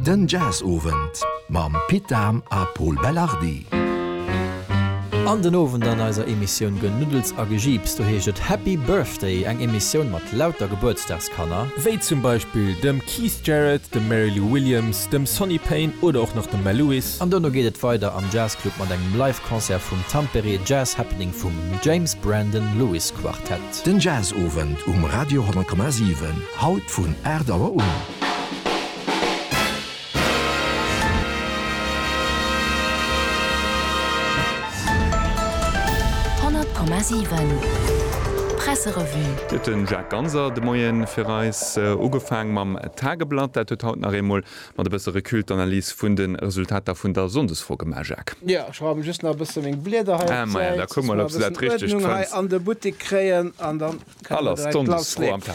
Den Jazzowend mam Pit Dahm a Pol Belardi. An den Owend an eiser Emissioun Genuddels a Gejiips, do heescht et Happy Birthday, eng Emissioun mat lauter Gebuertsdagskanner, wéi zum Beispill dem Keith Jarrett, dem Mary Lou Williams, dem Sonny Payne oder och nach dem Mel Lewis. An dono geet et weider am Jazzclub mat engem Live-Concert vum Tampere Jazz Happening vum James Brandon Lewis Quartet. Den Jazzowend um Radio 10,7, haut vun 8 Auer un. Presserevue. Et huet den Jacques Ganser de Moien fir eis ugefaang mam Tageblatt. Dat huet haut nach eemol Mat e bësse Recul d'Analys vun de Resultater vun der Sonndesfro gemaach, Jacques. Jo, ech raumen just nach e bësse meng Blieder hei op d'Säit, dass mer e bëssen Uerdnung hei an de Buttek kréien an dann kënne mer direkt lassleeën.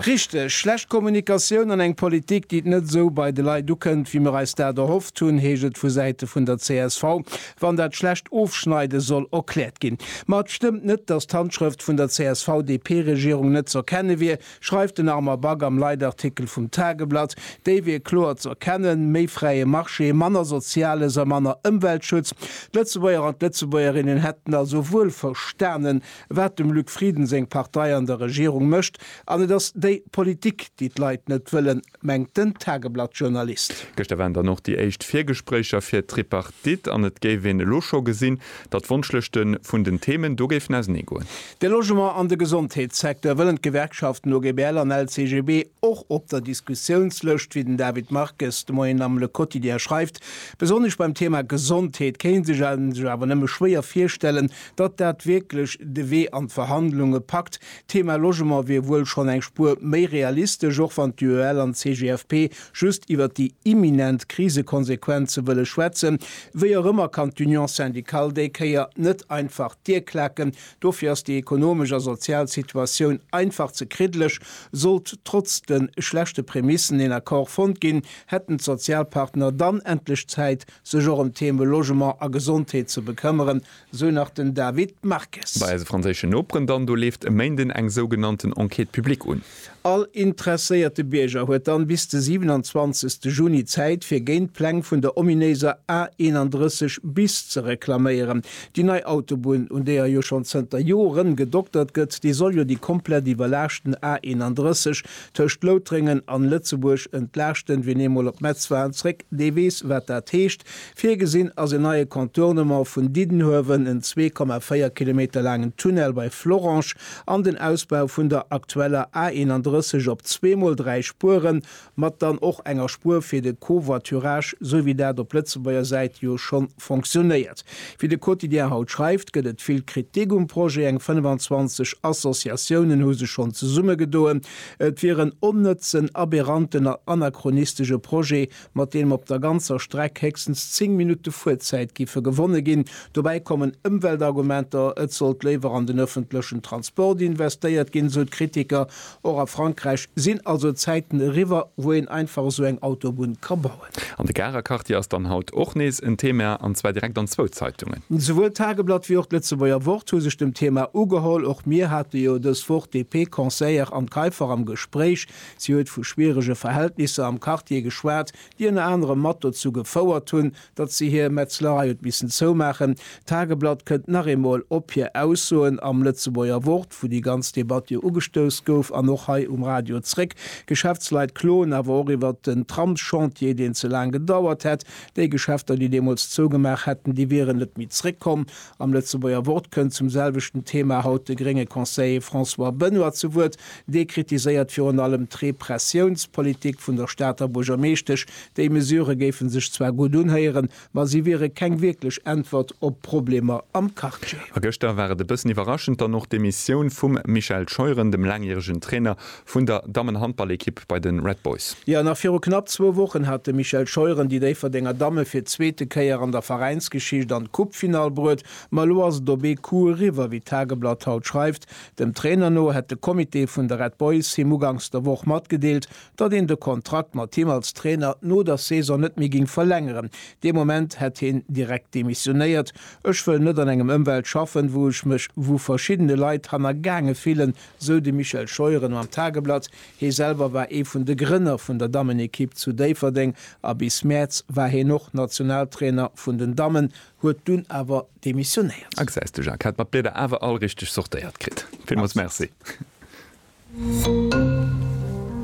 Richteg, schlecht Kommunikatioun an eng Politik, déi net esou bei de Leit ukënnt, wéi mer eis dat erhofft hunn, heescht et vu Säite vun der csv, wann dat schlecht Ofschneide soll erkläert ginn. Ma et stëmmt net, dass d'Handschrëft vun der CSV-DP-Regierung net z'erkenne wier, schreift den Armand Back am Leitartikel vum Tageblatt. Déi wier kloer ze erkennen, méi fräie Marché, manner Soziales a manner Ëmweltschutz. D'Lëtzebuerger an d'Lëtzebuergerinnen hätten also wuel verstanen, wat dem Luc Frieden seng Partei an der Regierung mécht, an et ass déi Politik, déi d'Leit net wëllen mengt den Tageblatt-Journalist. Gëschter waren dann och déi éischt Virgespréicher fir d'Tripartite an et géif een elo scho gesinn, datt d'Wonschlëschte vun den Themen do géifen ausenee goen. De Logement an de Gesondheetssecteur wëllen d'Gewerkschaften OGBL an LCGB och op der Diskussiounslëscht, wéi den David Marques de Moien am Le Quotidien schreift. Besonnesch beim Thema Gesondheet kéint een sech awer nëmme schwéier virstellen, datt dat wierklech de Wee an d'Verhandlunge packt. D'Thema Logement wier wuel schonn eng Spuer méi realistesch, och wann d'UEL an d'CGFP just iwwert déi imminent Krisekonsequenze wëlle schwätzen. Wéi och ëmmer kann d'Union syndicale déi Kéier net einfach d'Dier klaken. Dofir ass déi ekonomesch a sozial Situatioun einfach ze kriddlech. Sollt trotz de schlechte Prämissen een Accord fonnt ginn, hätten d'Sozialpartner dann endlech Zäit, sech och ëm d'Theme Logement a Gesondheet ze bekëmmeren, sou nach den David Marques. Bei eise franséischen Noperen dann, do leeft e Méinden eng sougenannten Enquête publique un. All interesséierte Bierger huet dann bis de 27 Juni Zäit fir géint d'Pläng vun der ominéiser A31 bis ze reklaméieren. Déi nei Autobunn, un deeër jo schonn zënter Joren gedoktert gëtt, déi soll jo déi komplett iwwerlaaschten A31 tëscht Loutrengen an Lëtzebuerg entlaaschten. Wien eemol op Metz war an zréck, dee weess wat dat heescht. Virgesinn ass en neie Contournement vun Diddenhuewen, en 2,4 Kilometer laangen Tunnel bei Florange an den Ausbau vun der aktueller A 31 op zweemol dräi Spueren, mat dann och enger Spuer fir de Covoiturage, esou wéi dat op Lëtzebuerger Säit jo scho fonctionnéiert. Wéi de Quotidien haut schreift, gëtt et vill Kritik um Projet. Eng 25 Associatiounen hu sech schonn zesummegedoen, et wier en onnëtzen, aberranten a anachronistesche Projet, mat deem op der ganzer Streck héchstens 10 Minutte Fuerzäit géife gewonne ginn. Dobäi kommen Ëmweltargumenter, et sollt léiwer an den ëffentlechen Transport investéiert ginn, esou d'Kritiker. Och a Frankräich sinn also Zäiten eriwwer, wou een einfach esou eng Autobunn ka bauen. An de Garer Quartier ass dann haut och nees en Thema, an zwar direkt an zwou Zeitungen. Souwuel d'Tageblatt wéi och d'Lëtzebuerger Wort hu sech dem Thema ugeholl. Och mir hate jo dës Woch DP-Conseillère Anne Kaiffer am Gespréich. Si huet vu schwierege Verhältnisser am Quartier geschwat, déi ënner anerem mat dozou gefouert hunn, datt si hir Metzlerei huet missen zoumaachen. D'Tageblatt kënnt nach eemol op hir Aussoen am Lëtzebuerger Wort, wou déi ganz Debatt jo ugestouss gouf, an och hei um Radio zréck. D'Geschäftsleit kloen awer och iwwert den Tramschantier, deen ze laang gedauert hätt. Déi Geschäfter, déi deemools zougemaach hätten, déi wieren net méi zréckkomm. Am Lëtzebuerger Wort kënnt zum selwechten Thema haut de grénge Conseiller François Benoy zu Wuert. Dee kritiséiert virun allem d'Repressiounspolitik vun der Stater Buergermeeschtesch. Déi Mesure géife sech zwar gutt unhéieren, ma si wiere keng wierklech Äntwert op d'Problemer am Quartier. A gëschter war et e bëssen iwwerraschend dann och d'Demissioun vum Michel Scheuren, dem laangjäregen Trainer Vun der Dammenhandballekipp bei de Red Boys. Jo, nach viru knapp zwou Wochen hat de Michel Scheuren déi Déifferdenger Damme fir d'zweete Kéier an der Veräinsgeschicht an d'Coupefinall bruet. Ma elo ass et op ee Coup eriwwer, wéi d'Tageblatt haut schreift. Dem Trainer no hätt de Comité vun de Red Boys him uganks der Woch matgedeelt, datt een de Kontrakt mat him als Trainer no der Saison net méi géing verlängeren. Dee Moment hätt heen direkt demissionéiert. Ech wëll net an engem Ëmwelt schaffen, wou ech mech, wou verschiddene Leit hannergaange fillen, Sou de Michel Scheuren am Tageblatt. Hie selwer war ee vun de Grënner vun der Dammenekipp zu Déifferdeng a bis Mäerz war hien och Nationaltrainer vun den Dammen, huet dunn awer demissionéiert. Access de Jacques hat mat Blieder awer all richteg sortéiert kritt. Villmols merci.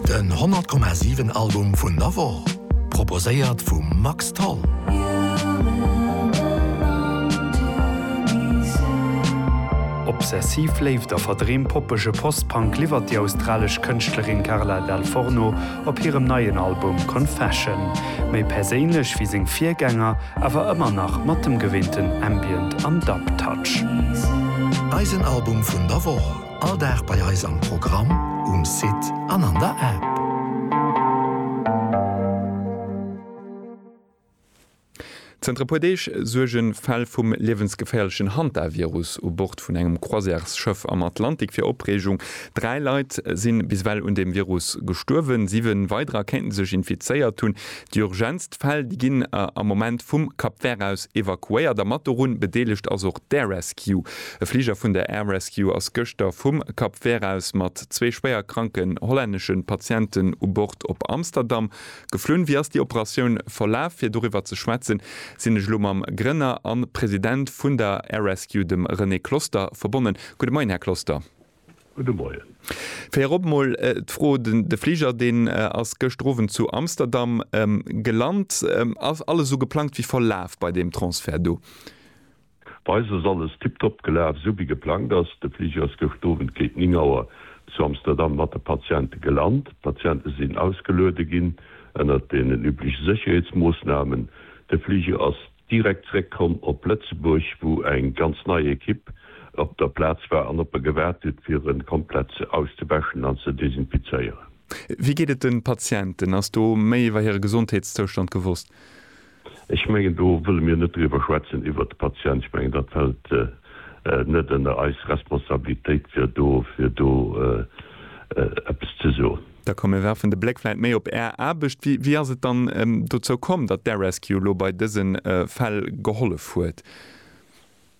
Den 100 Komma 7 Album vun der Woch, proposéiert vum Max Tholl. Obsessiv Léift a verdreem poppege Post-Punk liwwert déi australesch Kënschtlerin Carla Dal Forno op hirem neien Album Confession. Méi perséinlech wéi seng Virgänger, awer ëmmer nach mat dem gewinnten Ambient an Dub-Touch. Eisen Album vun der Woch. All Dag bei eis am Programm, um Site an an der App. Zënter e puer Deeg suerge Fäll vum liewensgeféierlechen Hantavirus u Bord vun engem Croisièresschëff am Atlantik fir Opreegung. Dräi Leit si bis ewell un deem Virus gestuerwen, siwe weiderer kéinte sech infizéiert hunn. Déi urgentst Fäll, déi ginn am Moment vum Cap Vert aus evakuéiert a mat dorun bedeelegt ass och d'Air Rescue. E Fliger vun der Air Rescue ass gëschter vum Cap Vert aus mat zwee schwéier kranken hollännesche Patienten u Bord op Amsterdam geflunn. Wéi ass déi Operatioun verlaf? Fir doriwwer ze schwätzen, sinn ech elo mam Grënner a President vun der Air Rescue, dem René Closter, verbonnen. Gudde Moien, Här Closter. Gudde Moien. Virop mol d'Fro, de Fliger deen ass gëschter Owend zu Amsterdam gelant. Ass alles esou geplangt wéi verlaf bei deem Transfert do? Bei eis ass alles tiptop gelaf, esou wéi geplangt ass. De Fliger ass gëschter Owend géint 9 Auer zu Amsterdam mat de Patiente gelant. D'Patiente sinn ausgeluede ginn ënnert den übleche Sécherheetsmoossnamen. De Fliger ass. direkt zréck komm op Lëtzebuerg, wou eng ganz nei Ekipp op der Plaz war an op e gewaart huet, fir e komplett auszewäschen an ze desinfizéieren. Wéi geet et de Patienten? Ass do méi iwwer hire Gesondheetszoustand gewosst? Ech mengen, do wëlle mir net driwwer schwätzen, iwwer d'Patienten. Ech mengen, dat fält net ënner eis Responsabilitéit, fir do eppes ze soen. Da komm mir werfen de Bléck vläit méi op Är Aarbecht. Wéi, wéi ass et dann dozou komm, datt d'Air-Rescue elo bei dëse Fäll gehollef huet?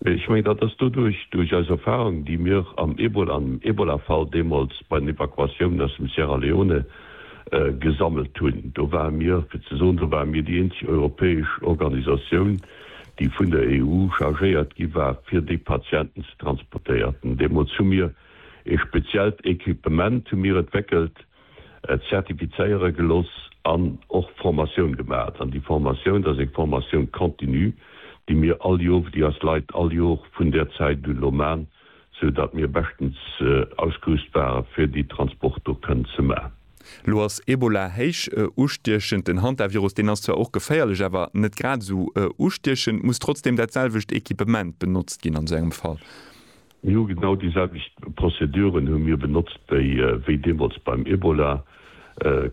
Ech mengen, dat ass doduerch, duerch eis Erfahrung, déi mir am Ebola, am Ebola-Fall deemools bei den Evakuatiounen aus dem Sierra Leone gesammelt hunn. Do ware mir, fir ze soen, do ware mir déi eenzeg europäesch Organisatioun, déi vun der EU chargéiert gi war, fir déi Patienten ze transportéierten. Deemools hu mir. Ee speziellt Equipement hu mir entwéckelt, zertifizéiere geloss an och Formatioun gemat. An déi Formatioun, dat ass eng Formatioun continue, déi mir all Jor, déi eis Leit all Jor vun där Zäit un elo man, sou datt mir beschtens ausgerüst ware fir déi Transport do kënnen ze man. Elo ass Ebola héich ustiechend. Den Hantavirus, deen ass zwar och geféierlech, awer net grad esou ustiechend. Muss trotzdeem dat selwecht Equipement benotzt ginn an esou engem Fall? Mir hu genau déi selwecht Prozeduren hu mir benotzt wéi wéi deemools beim Ebola,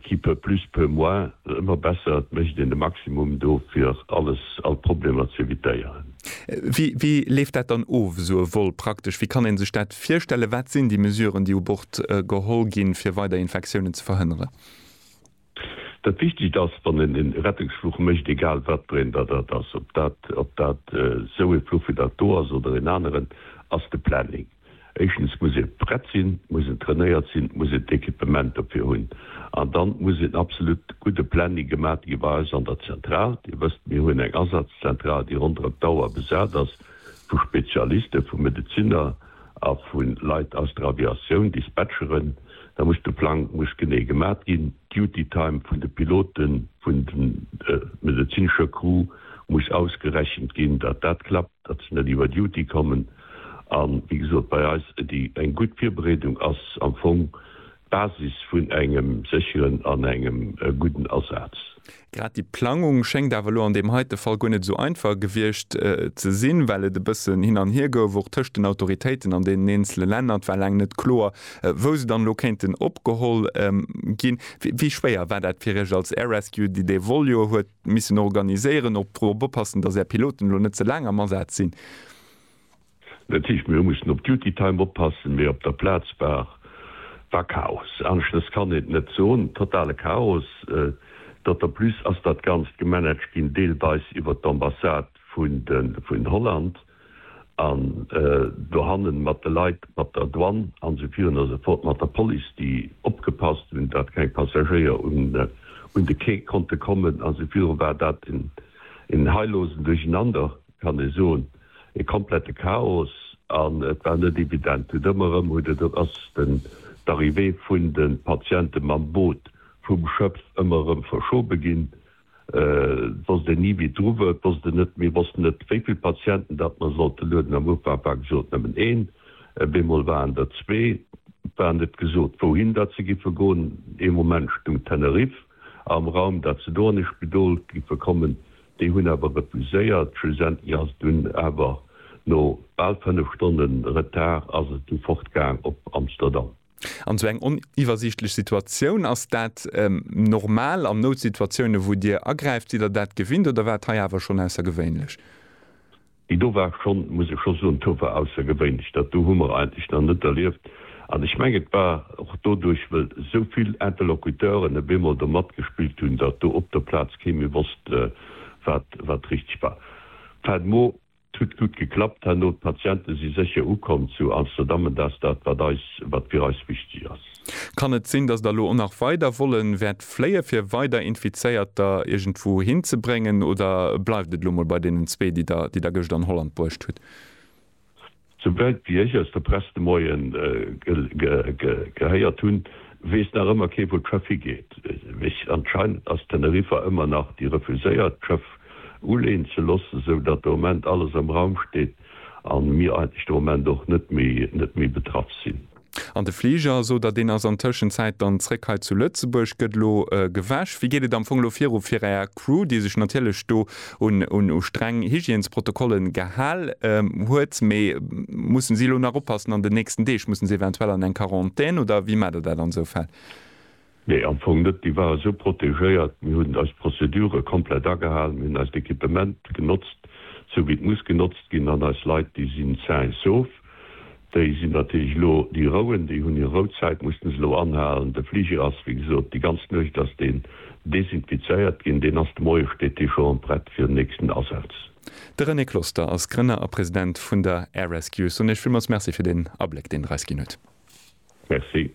qui peut plus peut moins, ëmmer besser, et mécht een de Maximum do fir alles, all Problemer ze evitéieren. Wéi wéi leeft dat dann of, esou e Vol praktesch? Wéi kann ee sech dat virstellen? Wat sinn déi Mesuren, déi u Bord geholl ginn, fir weider Infektiounen ze verhënneren? Dat Wichtigst ass, wann een e Rettungsfluch mécht, egal wat bréin dat dat ass, ob dat ob dat esou ee Fluch wéi dat do ass oder een aneren, ass de Planning. Éischtens muss ee prett sinn, muss en trainéiert sinn, muss een d'Equipement dofir hunn. An dann muss een absolut gudde Planning gemat gi bei eis an der Zentral. Dir wësst, mir hunn eng Asazszentral, déi ronderëm d'Auer besat ass vu Spezialisten, vu Medeziner a vu Leit aus der Aviatioun, Dispatcheren, da muss de Plang muss genee gemat ginn, d'Duty Time vun de Piloten, vun de medezinescher Crew muss ausgerechent ginn, datt dat klappt, datt se net iwwer Duty kommen. A wéi gesot, bei eis déi eng gutt Virbereedung ass am Fong D'Basis vun engem sécheren an engem gudden Asaz. Grad déi Plangung schéngt awer elo an deem heite Fall guer net esou einfach gewiescht ze sinn, well et e bëssen hin an hier gouf, och tëscht den Autoritéiten an deenen eenzele Länner. Et war laang net kloer, wou se dann elo kéinten opgeholl ginn. Wéi schwéier war dat fir Iech als Air Rescue, déi dee Vol jo huet missen organiséieren, och drop oppassen, datt Är Piloten elo net ze laang am Asaz sinn? Dat heescht, mir hu mussen op Duty Time oppassen, mee op der Plaz war war Chaos. Aneschtes kann een et net soen. Totale Chaos. D'autant plus ass dat Ganzt gemanagt ginn, deelweis iwwert d'Ambassade vun de vun Holland an dohannen mat de Leit mat der Douane an esou vir un esou fort, mat der Police, déi opgepasst hunn, dat keng Passagéier un un de Quai konnte kommen an esou viru war dat en en heillose Durcheinander. kann ee soen, ee komplette Chaos an et war net evident. Huet ëmmer erëm huet et, et ass den d'Arrivée vun de Patiente mam Boot vum Schëff ëmmer erëm verschobe ginn. Et wosst een ni wie dru wor, et wosst een net, mir wossten net wéi vill Patienten dat mer sollte lueden. Am Ufank war gesot nëmmen een, op eemol waren der zwee. Et war net gesot wouhin dat se giffe goen. Ee Moment stoung Tenerife am Raum, dat se do an ee Spidol giffe kommen, Déi hunn awer refuséiert. Schlussendlech ass et dunn awer, no bal 5 Stonne Retard, ass et du fortgaang op Amsterdam. An esou eng oniwwersiichtlech Situatioun, ass dat normal an Noutsituatiounen, wou Dir agräift? Sidd Der dat gewinnt oder war et hei awer schonn aussergewéinlech? Déi do war schonn, muss ech scho soen, tout à fait aussergewéinlech. Dat do hu mer eigentlech nach net erlieft. An ech mengen, et war och doduerch, well esou vill Interlocuteuren op eemol do matgespillt hunn, datt do op der Plaz kee méi wosst, wat, wat richteg war. Fin de mot, 't huet gutt geklappt herno. D'Patiente si sécher ukomm zu Amsterdam, an dat ass dat, wat eis, wat fir eis wichteg ass. Kann et sinn, dass Der elo och nach weider Vollen wäert fléie fir weider Infizéierter iergendwou hinzebréngen oder bleift et elo mol bei deenen zwee, déi Der, déi Der gëscht an Holland bruecht hutt? Souwäit wéi ech aus der Press de Moien gehéiert hunn, weess nach ëmmer kee wou d'Schëff higeet. Mee anscheinend ass Teneriffa ëmmer nach déi refuséiert d'Schëff uleeën ze loossen, sou datt de Moment alles am Raum steet a mir eigentlech de Moment och net méi betraff sinn. An de Fliger, sot Der, deen ass an Tëschenzäit dann zréck hei zu Lëtzebuerg, gëtt elo gewäsch. Wéi geet et am Fong elo viru fir Är Crew, déi sech natierlech do un u streng Hygiènesprotokolle gehal huet, mee mussen si elo nach oppassen an den nächsten Deeg? Mussen si eventuell an eng Quarantän oder wéi maacht Der dat an esou Fäll? Nee, am Fong net. Déi ware sou protegéiert. Mir hunn eis Prozedure komplett agehalen. Mir hunn eist Equipement genotzt, sou wéi et muss genotzt ginn. An eis Leit, déi sinn sain et sauf. Déi sinn natierlech elo, déi rouen, déi hunn hir Rouzäit, mussten se elo anhalen. De Fliger ass, wéi gesot, déi ganz Nuecht ass deen desinfizéiert ginn. Deen ass, de Moie steet dee scho an, prett fir den nächsten Asaz. De René Closter ass Grënner a President vun der Air Rescue. Ech soen Iech villmools Merci fir deen Abléck, deen Der eis ginn hutt. Merci.